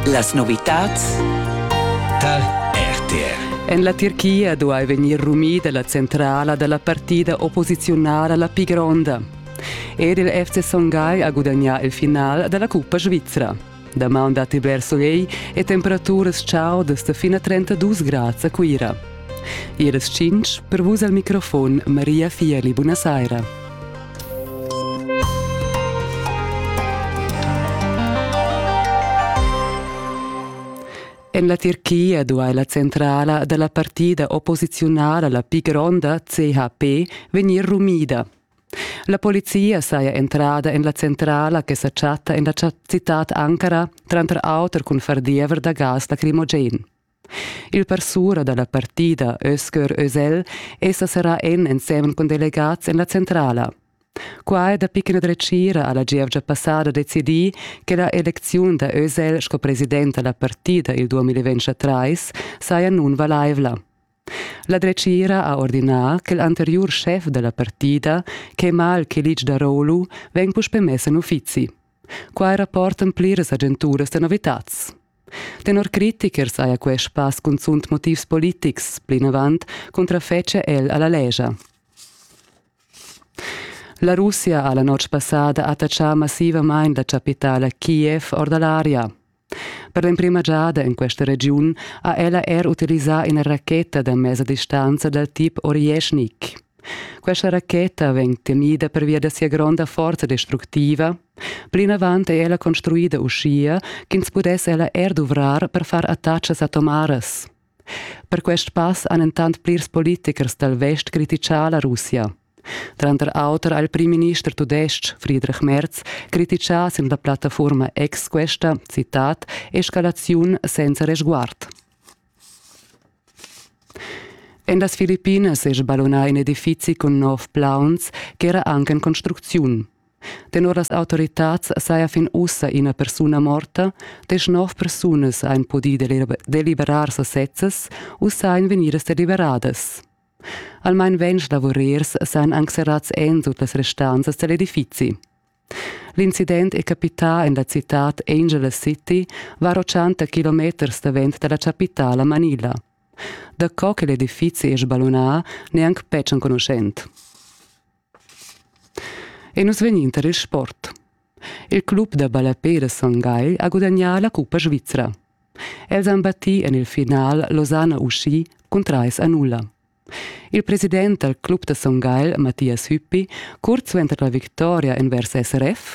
Las novitads tar RTR. En la Tirchia duai vegnir rumida la centrala da la partida opposiziunala la pli gronda. Ed il FC Son Gai ha gudagnà il final da la cuppa svizra. Damaun datti bler soleil e temperaturas chaudas fin a 32 grads a Cuira. Iras tschintg per vus al microfon Maria Fieli. Buna saira. En la Tirchia duai la centrala da la partida opposiziunala, la pli gronda, CHP, vegnir rumida. La polizia saja entrada en la centrala che sa chatta en la citad Ankara, tranter auter cun far diever da gas lacrimogen. Il parsura da la partida Özgür Özel è sa serrà en ensemen cun delegats en la centrala. Quai dapi ch'ina dretgira ha la gievgia passada decidì che la elecziun da Özel sco president da la partida il 2023 saja nunvalaivla. La dretgira ha ordinà che l'anteriur schef da la partida, Kemal Kilic Daroglu, vegn puspè mess en uffizi. Quai rapportan pliras agenturas da novitads. Tenor critichers haja quest spass cunzunt motivs politics, plinavant cuntrafetschia el a la lescha. La Russia ha la notg passada attachà massivamain la chapitala Kiev or da l'aria. Per l'emprima giada en questa regiun ha ella er utilisà ina racheta da mesa distanza dal tip Orješnik. Questa racheta vegn tegnida pervia da sia gronda forza destructiva. Plinavant è ella construida uschia ch'ins pudess ella er duvrar per far attachas atomaras. Per quest pass han entant plirs politichers dal vest criticà la Russia. Tranter auter ha il primminister tudestg Friedrich Merz criticà sin la plattafurma Ex questa, citat, escalaziun senza resguard. En las Filippines è sballunà in edifizi cun nov plauns ch'era anche in construcziun. Tenor las autoritads saja fin ussa ina persuna morta, deschnov persunas han pudì deliberar sasezzas u sajan vegnidas deliberadas. Almain ventg lavurers sajan anc serrads ensut las restanzas da l'edifizi. L'incident è capità en la citad Angeles City, var 80 kilometers davent da la chapitala Manila. Da co che l'edifizi è sballunà, neanc betg enconuschent. E nus vegnin tar il sport. Il club da ballapè da Son Gagl ha gudagnà la cuppa svizra. Els han battì en il final Losanna Uschi cun trais a nulla. Il president dal club da Son Gagl, Mathias Hüppi, curt suenter la victoria envers SRF,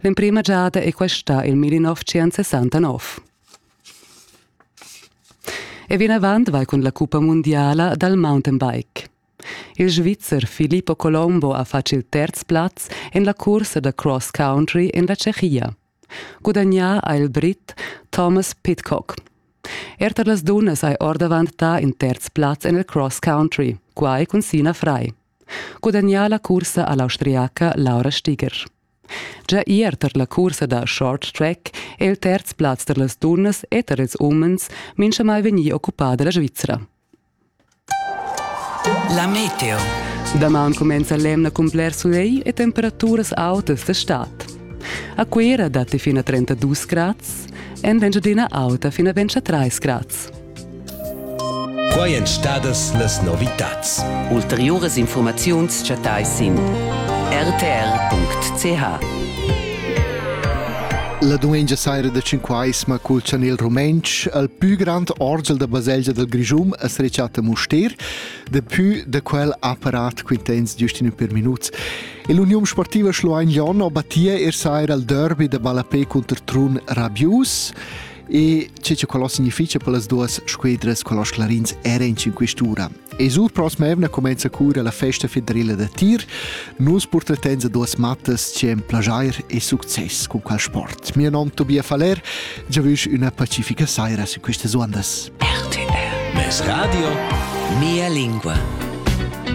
L'emprima giada è questa il 1969. E vinavant vai cun la cuppa mundiala dal mountainbike. Il Svizzer Filippo Colombo ha fatg il terz plaz en la cursa da cross country en la Tschechia. Gudagnà ha il Brit Thomas Pitcock. Er tar las dunnas hai ordavant dà in terz plaz en il cross country, quai cun Sina Frei. Gudagnà la cursa a l'austriaca Laura Stiger. Gia ier tar la cursa da short track è il terz plaz tar las dunnas e tar ils umens minchamai vegnì occupà da la Svizra. La meteo. Daman cumenza l'emna cun bler sulegl e temperaturas autas d'estat. A Cuira datti fin a 32 grads, en Engiadina auta fin a 23 grads. Quai èn stadas las novitads. Ulteriuras infurmaziuns chattai sin rtr.ch. La dumengia saira da Cinquaisma cul chanel rumentsch al pü grand orgel da baselgia del Grischum es rechatta Mustér, de pü da quel apparat quintens giustino per minuts. E l'Union Sportiva Schluein Jon ho battia er saira al derby da ballapé cunter Trun Rabius. E che che quello significa per las duas squadras con los clarins era in cinquestura. E sur prossima evna comincia cura la festa federale da tir. Nus portatens a duas mattas c'è un plagier e succes con quel sport. Mio nome Tobias Faller, già vusch una pacifica saira su queste ondas. RTR. Mes radio, mia lingua.